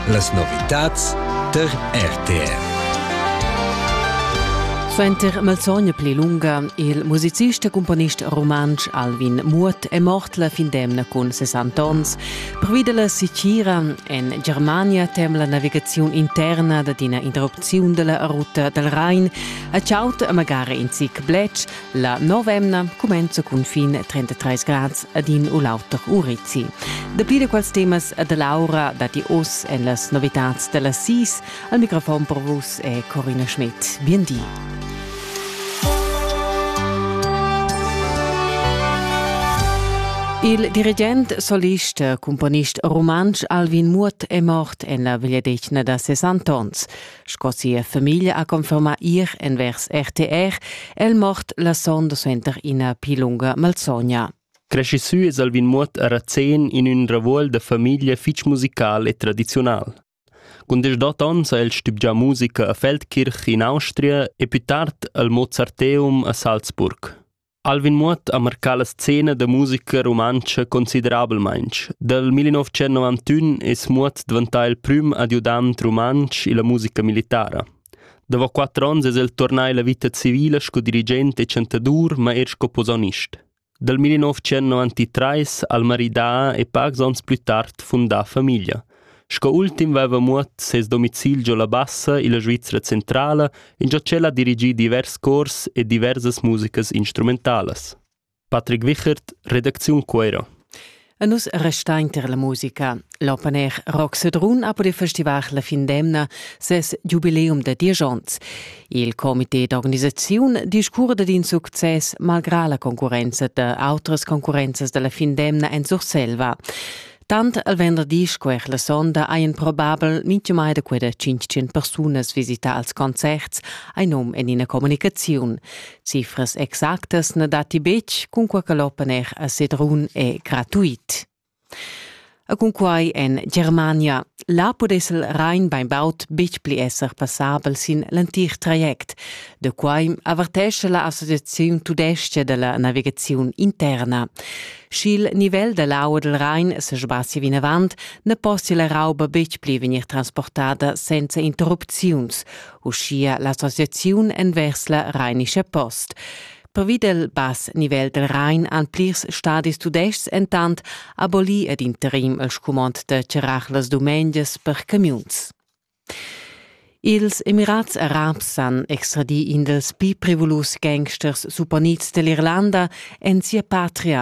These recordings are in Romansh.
Las novitads tar RTR. Suenter malsogna pli lunga il musicist e cumponist rumantsch Alvin Muot è mort la fin d'emna cun 60 onns. Pervi dalla sicira en Germania tem la navigaziun interna dad ina interrupziun dalla ruta dal Rhein a chaut a magari in zic bletsch, La novemna cumenza cun fin 33 grads ad in u l'auter Urizi. Dapli da quels temas da Laura datti oz en las novitads da las sis. Al microfon per vus è Corina Schmidt. Bien di. Il dirigent, solist, cumponist rumantsch Alvin Muot è mort en la vegliadetgna da ses antons. Sco sia famiglia ha confermà ir envers RTR, è il mort la sonda suenter ina pli lunga malsogna. Cresci sü es Alvin Muot a Razén in ün ravuol da famiglia fich musical e tradiziunal. Cun deschdot ons ha el stübgià musica a Feldkirch in Austria e pü tard al Mozarteum a Salzburg. Alvin Muoth ha marcà la scena da musica rumantscha considerablmaintg. Dal 1991 es Muoth dvantà il prüm adiudant rumantsch illa musica militara. Davo quatter ons es el turnà illa vita civila sco dirigent e chantadur, ma eir sco posaunist. Dal 1993 ha'l maridà e pacs ons plü tard fundà famiglia. Sco ultim veva Muot ses domicil giò la Bassa illa Svizra centrala ingio ch'el ha dirigì divers cors e diversas musicas instrumentalas. Patrick Wichert, redacziun Cuera. E nus restain ter la musica. L'open air Rock Sedrun ha pudì festivar la fin d'emna ses giubileum da diesch onns. Il comité d'organisaziun discurda d'in success malgrà la concurrenza da autras concurrenzas da la fin d'emna en Surselva. Tant al venderdi sco er la sonda hajan probabel mintgumai da quella 500 persunas visità als concerts, hai num en ina communicaziun. Cifras exactas na datti betg, cunquai che l'open air a Sedrun è gratuit. E cunquai en Germania. Là pudess el Rhein bainbaud betg pli esser passabel sin l'entir traject. Da quai avertescha la Associaziun tudestga da la navigaziun interna. Sch'il nivel da l'aua dal Rain sesbassi vinavant, na possia la rauba betg pli vegnir transportada senza interrupziuns, uschia l'associaziun envers la Rheinische Post. Pervi dal bass nivel dal Rhein han plirs stadis tudestgs entant abolì ad interim il scumond da charrar las dumengias per camiuns. Ils Emirats Arabs han extradì in dals pli prevulus gangsters supponids da l'Irlanda en sia patria.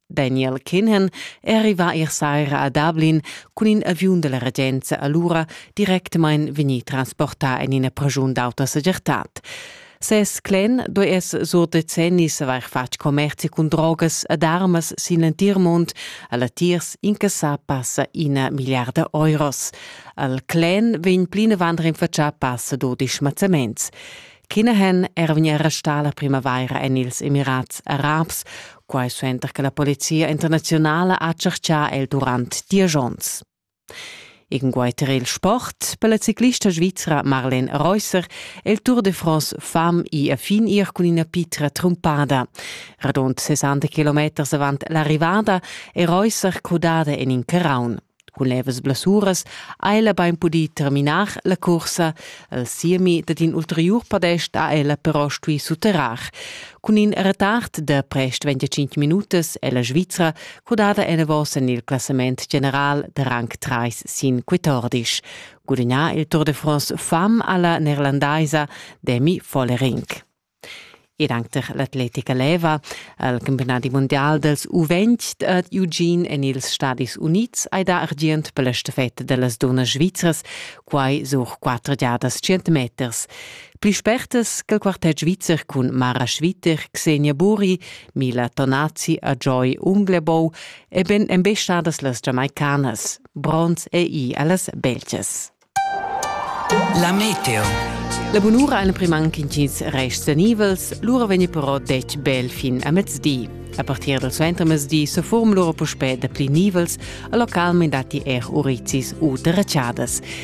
Daniel Kinnan è arrivà ier saira a Dublin cun in aviun da la regenza alura directamain vegnì transportà en ina praschun d'auta segirtad. Ses clen do es sur decennis avair fatg commerzi cun drogas ed armas sin l'entir mund, a latiers incassà passa ina milliarda euros. Al clen vegn plinavant rinfatschà passa dudisch mazzaments. Kinahan era vegnì arrestà la primavaira en ils Emirats Arabs, quai suenter che la polizia internaziunala ha tscherchà el durant dies onns. Inguai tar il sport per la ciclista svizra Marlene Reusser è il Tour de France fam i a fin ir cun ina pitra trumpada. Radund 60 kilometers avant l'arrivada è Reusser crudada en in carraun. Cun levas blessuras ha ella bain pudì terminar la cursa. Al siemi dad in ulteriur podest ha ella però stuì sutterrar. Cun in retard da prest 25 minutas è la Svizra Cudada enavos en il classament general da rang 3 sin 14. Gudignà il Tour de France fam alla neerlandaisa Demi Vollering. Ed anche l'atletica leva al campionat mondial dels U20 ad Eugene en ils Stadis Units hai da argient per la stafetta dellas donnas svizras, quai sur quattro giadas 100 meters. Pli spertas ch'el quartet svizzer cun Mara Schwitter, Xenia Buri, Mila Tonazi a Joy Unglebou e ben embestadas las Jamaicanas, bronz e i a las Belgias. La meteo. La bunura ein primanc intgins rests nivels, lura vegni però detg bel fin a mezdi. A partir del suentermezdi se form lura puspè da pli nivels, a localment dati er urizis u derracciadas.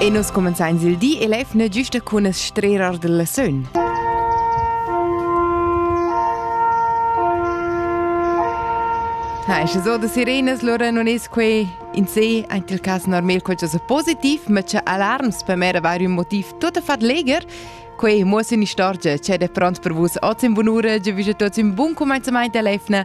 E nus cumenzains il di e lev ne giusta cun es strerar della sön. Ha, e so da sirenas, lora non es quei in se, ant il cas normal qualche positiv, ma c'è alarms per me avere un motiv tutto fat leger, quei muossen istorgia c'è de pront per vus oz in bun'ura, ge vige tots un buon comenzamento a lefna,